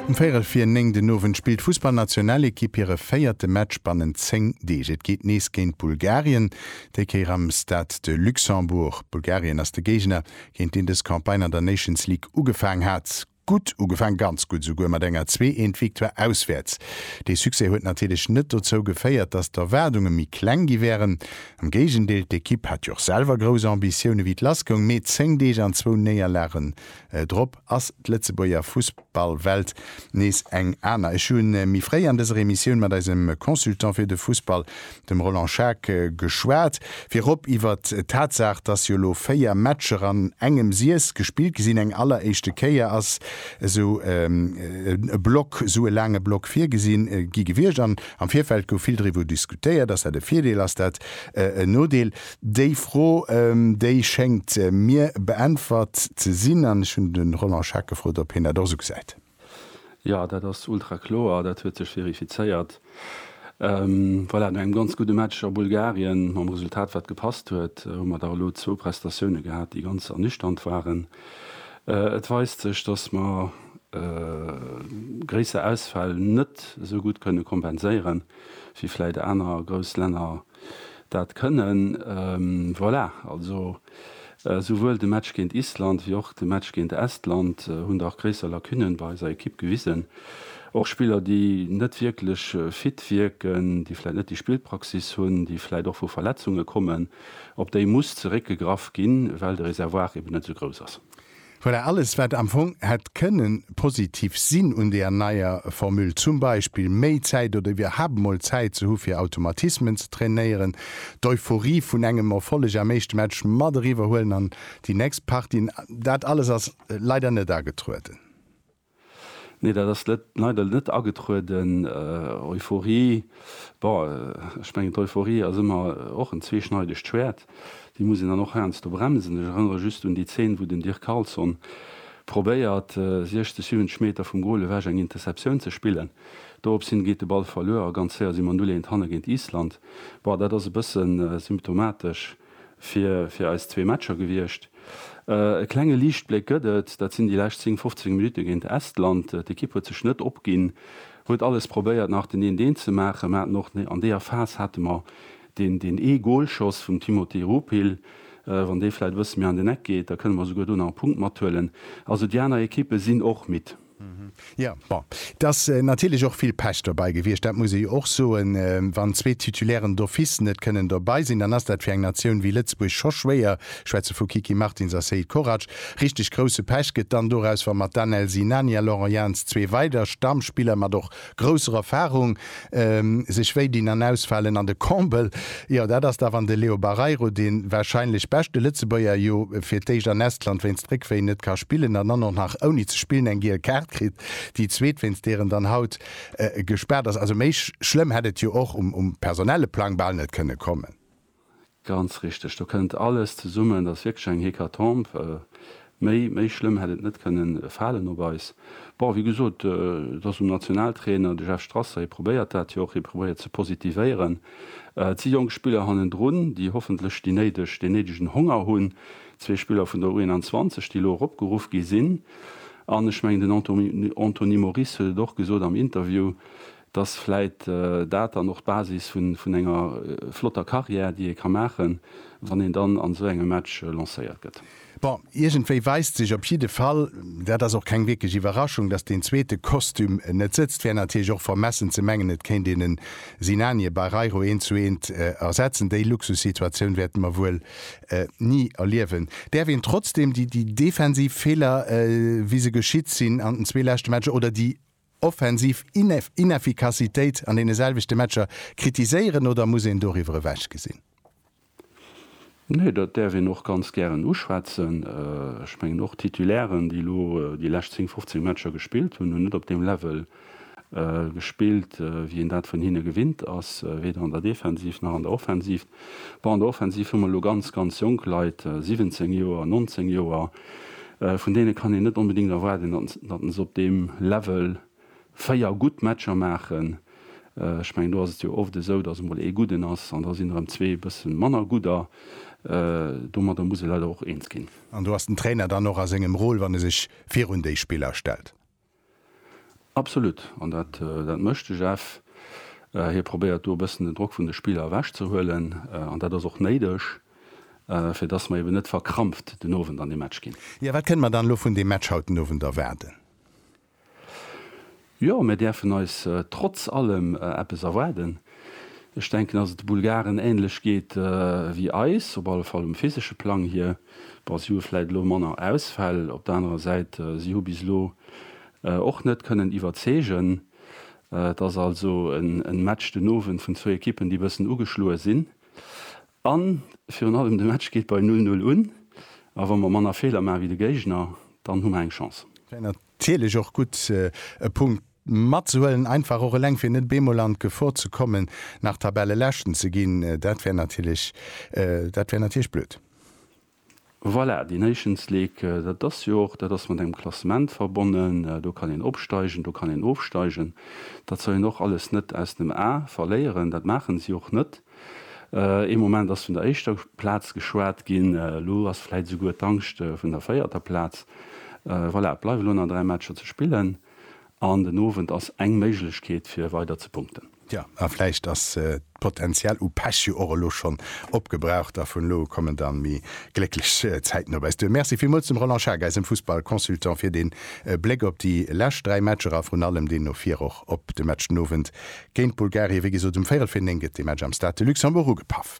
Um véierel vir néng den Owend spillt d'Fussballnationalekipp hire véierte Match bannent zéng Deeg. Et geet nees géint Bulgarien, déi Kéier am Stade de Luxembourg. Bulgarien ass de Géigner, géint deen dës Campagne an der Nations League ugefaang hat. Gutt ugefaang, ganz gutt esouguer, mat enger Zwee-eent-Victoire auswäerts. Dee Succès huet natierlech net dozou geféiert, datt d'Erwaardunge méi kleng gi wären. Am Géigendeel, d'Ekipp hat jo och selwer grouss Ambitioune wéi et lassgoung, mee zéng Deeg an zwou Néierlagen, Drop ass d'Lëtzebuerger Fussballwelt nees eng aner. Ech hu méi fréi an dëser Emissioun mat eisem Consultant fir de Fussball, dem Roland Schaack, geschwat, virop iwwert d'Tatsaach, datt jo elo 4 Matcher an engem Siess gespillt gi sinn. Eng alleréischte Kéier ass esou e Block, esou e laange Block virgesi gi gewiescht an am Virfeld gouf vill driwwer diskutéiert, ass dat e Virdeel, ass dat en Nodeel? Déi Fro, déi schéngt mir beäntwert ze sinn. An ech hunn de Roland Schaack gefrot, ob hien dat och esou gesäit. Jo, dat ass ultra kloer. Dat huet sech verifizéiert. Voilà, no engem ganz gudde Match a Bulgarien, mam Resultat, wat gepasst huet, hu mer da elo zwou Prestatioune gehat, déi ganz ernüchternd waren. Et weist sech, datt mer gréisser Ausfäll net esou gutt kënne kompenséieren, wéi vläicht aner grouss Länner Dat kënnen, voilà, also souwuel de Match géint Island wéi och de Match géint Estland hunn dach gréisser Lacunen bei eiser Ekipp gewisen. Och Spiller, déi net wierklech fit wierken, déi vläit net déi Spillpraxis hunn, déi vläit och vu Verletzunge kommen, op déi muss zeréckgegraff ginn, well de Reservoir eben net esou grouss ass. Voilà, alles wat am Fong hätt kënne positiv sinn un deer neier Formule, zum Beispill méi Zäit oder iwwerhaapt emol Zäit ze hu fir Automatismen ze trainéieren, d'Euphorie vun engem Erfolleg am éischte Match mat eriwwer huelen an déi nächst Partie, dat alles ass leider net agetrueden. Nee, dat ass net, leider net agetrueden. Euphorie, bon, ech mengen d'Euphorie ass ëmmer och en zweeschneidegt Schwäert, déi muss een dann och heiansdo bremsen. Ech erënnere just un déi Zeen, wou den Dirk Carlson probéiert, 60, 70 Meter vum Goal ewech eng Interceptioun ze spillen. Dorops hin geet de Ball verluer a ganz séier si mer 0, 1 hanne géint Island. Bon, dat ass e bëssen symptomatesch. fir eis zwee Matcher gewiescht. E klenge Liichtbléck gëtt et, dat sinn déi lescht 10, 15 Minutte géint Estland. D'Ekipp huet sech net opginn, huet alles probéiert nach den 1-1 ze maachen. Mer haten och an deeër Phas hate mer deen ee Golschoss vum Timothy Rupil. Wann dee vläit e bësse méi an den Eck geet, da kënne mer souguer do nach e Punkt mathuelen. Also déi aner Ekippe sinn och midd. Jo, bon, et ass natierlech och vill Pech dobäi gewiescht, dat muss ee jo och soen. Wann zwee Titulairen d'office net kënnen dobäi sinn, dann ass dat fir eng Natioun wéi Lëtzebuerg scho schwéier, ech schwätze vu Kiki Martins a Seid Korac. Richteg grousse Pech gëtt dann doraus, wa mat Danel Sinani a Laurent Jans zwee weider Stammspiller, mat och Grousser Erfahrung, sech wéi dinn an ausfalen an de Comble, jo dat ass da wann de Leo Barreiro, de wahrscheinlech beschte Lëtzebuerger, jo fir d'éischt an Estland wéinst Réckwéi net ka spillen an dann och nach ouni ze spillen eng giel Kaart kritt, déi zweet wéinst deer en dann haut gespaart ass. Also méi schlëmm hätt et jo och um personelle Plang bal net kënne kommen. Ganz richteg, do kënnt alles zesummen. Et ass wierklech eng Hécatombe. Méi, méi schlëmm hätt et net kënnen falen op eis. Bon, wéi gesot, et ass um Nationaltrainer, de Jeff Strasser. Hie probéiert dat jo och, hie probéiert ze positivéieren. Et si jonk Spiller hannendrun, déi hoffentlech déi néideg, deen néidegen Honger hunn. Zwee Spiller vun der U21, déi elo eropgeruff gi sinn. An ech mengen, den Anto, Anthony Moris huet et och gesot am Interview, Dass vläit dat dann och d'Basis vun enger flotter Carrière, déi ee ka maachen, wann een dann an esou engem Match lancéiert gëtt. Bon, iergendwéi weist sech op jidde Fall, dat ass och keng wierklech Iwwerraschung, dass deen zweete Kostüm net sëtzt. Wär natierlech och vermessen ze mengen, et kéint een en Sinani, e Barreiro eent zu eent ersetzen. Déi Luxussituatioun wäerte mer wuel ni erliewen. Däerf een trotzdeem déi defensiv Feeler, wéi se geschitt sinn an den zwee leschte Matcher, oder déi offensiv Inefficacitéit an deene selwechte Matcher kritiséieren oder muss een doriwwer ewech gesinn? Nee, dat däerf een och ganz gären uschwätzen. Ech mengen och d'Titulairen, déi elo déi lescht 10, 15 Matcher gespillt hunn, hunn net op deem Level gespillt, wéi een dat vun hinne gewinnt ass, weder an der Defensiv nach an der Offensiv. Bon, an der Offensiv hu mer elo ganz, ganz jonk Leit, 17 Joer, 19 Joer. Vun deene kann een net onbedéngt erwaarden, datt se op deem Level véier gutt Matcher maachen. Ech mengen, do ass et jo oft esou, datt emol ee Gudden ass an da sinn erëm zwee e bësse manner Gudder. Domadder muss ee leider och eens ginn. An do ass den Trainer dann och a sengem Rôle, wann e sech virun déi Spiller stellt. Absolut, an dat mécht de Jeff. Hie probéiert do e bëssen den Drock vun de Spiller ewech ze huelen. An dat ass och néideg, fir dass mer eben net verkrampft den Owend an dee Match ginn. Jo, wat kënne mer dann elo vun deem Match haut den Owend erwaarden? Jo, mir däerfen eis trotz allem eppes erwaarden. Ech denken, dass et de Bulgaren änlech geet wéi eis, op alle Fall um physesche Plang hier. Bon, si hu vläit elo manner Ausfäll. Op der anerer Säit, si hu bis elo och net kënnen iwwerzeegen. Et ass also e Match den Owend vun zwou Ekippen, déi e bëssen ugeschloe sinn. A virun allem, de Match geet bei null null un. A wa mer manner Feeler maache wéi de Géigner, dann hu mer eng Chance. Natierlech och gutt, e Punkt matzehuelen, einfach och eleng, fir net bemol an d'Gefor ze kommen, nach Tabelleleschten ze ginn. Dat wär natierlech, dat wär natierlech blöd. Voilà, déi Nations League, dat ass jo och, dat ass mat engem Klassement verbonnen. Do kann een opsteigen, do kann een ofsteigen. Dat soll een och alles net aus dem A verléieren. Dat maachen si och net. Ee Moment ass vun der éischter Plaz geschwat ginn, elo ass vläit esouguer d'Angscht vun der véierter Plaz. Voilà, et bleiwen elo nach dräi Matcher ze spillen an den Owend ass eng Méiglechkeet fir weider ze punkten. Jo, a vläicht ass d'Potenzial u Pech jo och elo schonn opgebraucht a vun elo u kommen da méi glécklech Zäiten op äis duer. Merci villmools dem Roland Schaack, eisem Fussball-Consultant, fir dee Bléck op déi lescht dräi Matcher a vrun allem deen no vir och op de Match den Owend Géint Bulgarien, wéi gesot, um véirel vir néng gëtt dee Match am Stade de Luxembourg ugepaff.